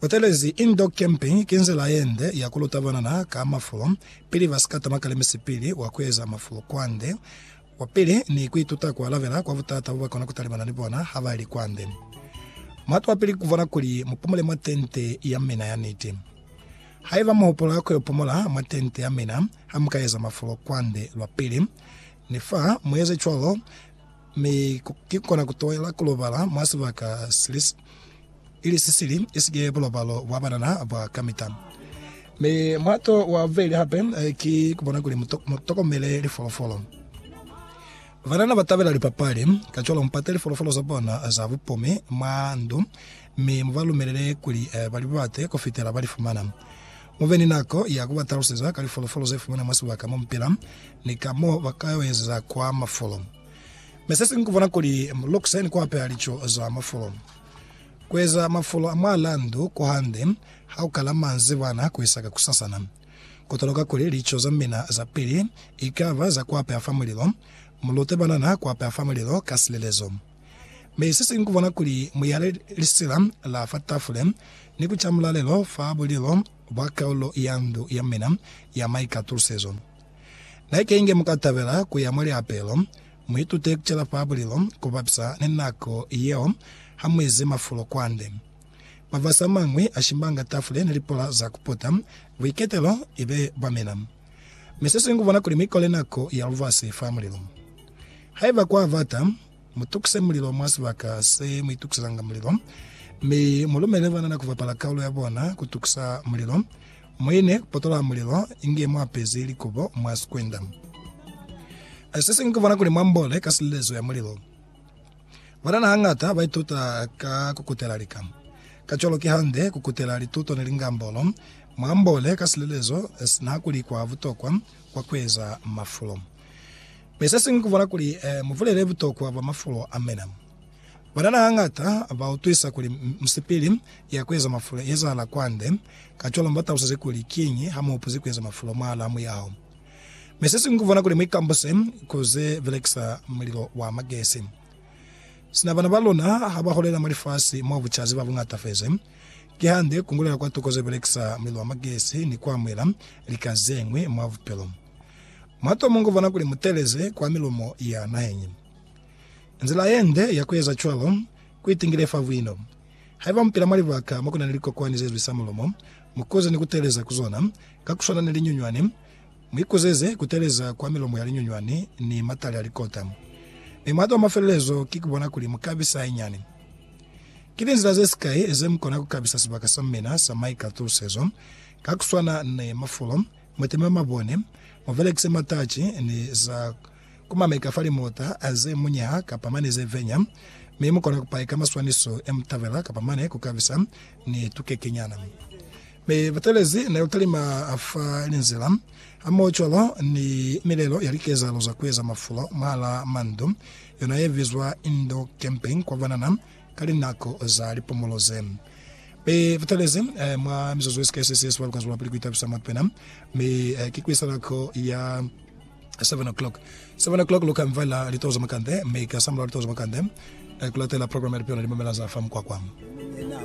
Butelezi Indoor Camping ki nzila yende ya kuluta banana ka mafulo pili basika tama kale misipili wa kueza mafulo kwande kwa pili ni kuituta kualabela kwa butata bobakona kutalibana ni bona habaili kwande. Muhatu wa pili kukubona kuli mupumule mwa tente ya mina ya niti. Haiba muhupula kuyo pumula mwa tente ya mina hamuka eza mafulo kwande lwa pili, nifa mueze cwalo, Mi ki kona ku toela ku lobala mwa sibaka sili, ili si sili, isike bulobalo bwa banana bwa kamita. Mi mulato wa bubeli hape ki ku bona kuli mu tokomele lifolofolo. Banana ba tabela lipapali, kacwalo mu pate lifolofolo za bona za bupumi mwa ndu, mi mu ba lumelele kuli ba li bate ku fitela ba li fumana. Mu be ni nako ya ku ba taluseza ka lifolofolo ze fumanwa mwa sibaka mo mu pila ni ka mo ba ka yo ezeza kwa mafulo. Mi se siñwi ku bona kuli mu lukuse ni ku apeha lico za mafulo. Ku eza mafulo a mwa landu ku hande ha ku kala manzibwana ku isa ka kusasana. Ku toloka kuli lico za mina za pili i ka ba za ku apeha fa mulilo, mu lute banana ku apeha fa mulilo ka silelezo. Mi sesiñwi kubona kuli muyale lisila la fa tafule ni kuca mulalelo fa bulilo bwa kaulo ya ndu ya mina ya maikatulusezo. Naikenge mukatabela kuya mwa liapelo, muitute kucela fa bulilo kubapisa ni nako yeo hamuizi mafulo kwande. Mavasi amañwi ashimbanga tafule ni lipola za kuputa buiketelo ibe bwa mina. Mi se siñwi kubona kuli mikole nako ya lubasi fa mulilo mo. Haiba kwa bata, mutukise mulilo mwa sibaka se muitukisezanga mulilo, mi mulumele banana kubapala kaulo ya bona kutukisa mulilo. Muine kupotola mulilo inge muapezi likobo mwa sikwenda. Se siñwi kubona kuli muambole ka silezo ya mulilo. Banana hañata ba ituta ka ku kutela lika. Kacwalo ki hande ku kutela lituto ni lingambolo mwa mbole ka silelezo sina kuli kwa butokwa kwa ku eza mafulo. Mi se siñwi ku bala kuli mu bulele butokwa bwa mafulo a mina. Banana hañata ba utwisa kuli misipili ya ku eza mafulo i ezahala kwande, kacwalo mi ba talusize kuli kiñi ha mu hupuzi ku eza mafulo mwahalaa muyaho. Mi sesiñwi kuvona kuli muikambuse ku ze belekisa mulilo wa magesi. Sina bana ba luna ha ba holela mwa lifasi mo bucazi ba bu ngatafezi, kihande ku ngulela kwa tuko ze belekisa mulilo wa magesi ni ku amuhela lika zeñwi mwa bupilo. Mwa to mungu vona kuli mu teeleze kwa milumo ya naheñi. Nzila yende ya ku eza cwalo ku itingile fa buino. Haiba mupila mwa libaka mo ku na ni likokwani ze zwisa mulumo, mukuze ni ku teeleza ku zona. Ka ku swana ni linyunywani, mu ikuseze ku teeleza kwa milomo ya linyunywani ni matali a likota. Mi muhato wa mafelelezo ki ku bona kuli mu kabisa hainani. Ki linzila ze sikai ze mu kona ku kabisa sibaka sa mina sa maikatusezo. Ka ku swana ni mafulo, mu teme mabone, mu belekise mataci ni za Ku mameka fa limota ze munyaha kapa mane ze venya, mi mu kona ku paika maswaniso e mu tabela kapa mane ku kabisa ni tukekenyana. Mi batelezi ne lu talima fa linzila, hamohocwalo ni milelo ya likezahalo za kueza mafulo mwahala mandu, yona ye bizwa indoor camping kwa banana ka linako za lipumulo ze. Mi batelezi mwa mizuzu ye sika ye sesi yesubali kwa zwelapili ku itabisa mwa pena, mi ki ku isa nako ya. 7 o'clock 7 o'clock luka mvela litoho za makande mme ika samulaho litoho za makande eh, kulatela program ya lipiona limamela za fa mukwakwam